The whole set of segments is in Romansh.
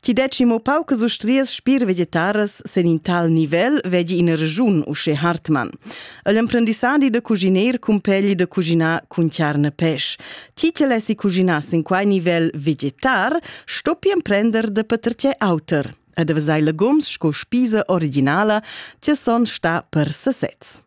Ti deci mo paucas ustrias spir vegetaras sen in tal nivel vegi ina regiun usche Hartmann. El emprendissadi da cuginer cumpegli da cuginar cun charne pesch. Ti te lessi cuginar sin quai nivel vegetar, stoppi emprender de patertje auter. Ed avesai legums sco spisa originala, ti son sta per sesez.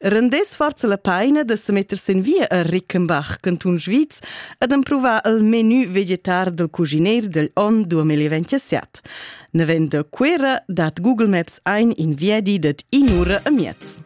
Rendess forza la paina da se metter sin via a Rickenbach, cantun Sviz, ed empruvar il menu vegetar del cugineir del on 2027. Navend da Cuera dat Google Maps ein in viadi dad in'ura a miez.